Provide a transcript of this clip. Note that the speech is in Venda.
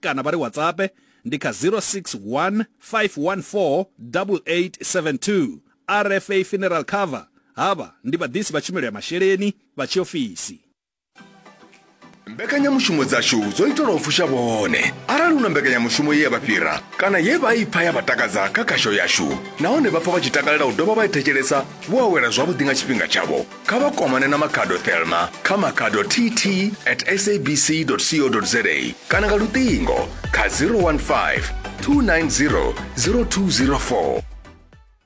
kana vha ri WhatsApp ndi kha 061 514 8872. RFA Funeral Cover havha ndi vhaḓisi vha tshumelo ya masheleni vha tshiofisi. mbekanyamushumo dzashu dzo itelwa u fusha vhone arali hu na mbekanyamushumo ye ya vha fhira kana ye vha i pfa ya vha takadza kha khasho yashu nahone vha pfa vha tshi takalela u dovha vha i thetshelesa vho awela zwavhuḓi nga tshifhinga tshavho kha vha kwamane na makhado thelma kha makhado tt at sabc co za kana nga luṱingo kha 015 290 0204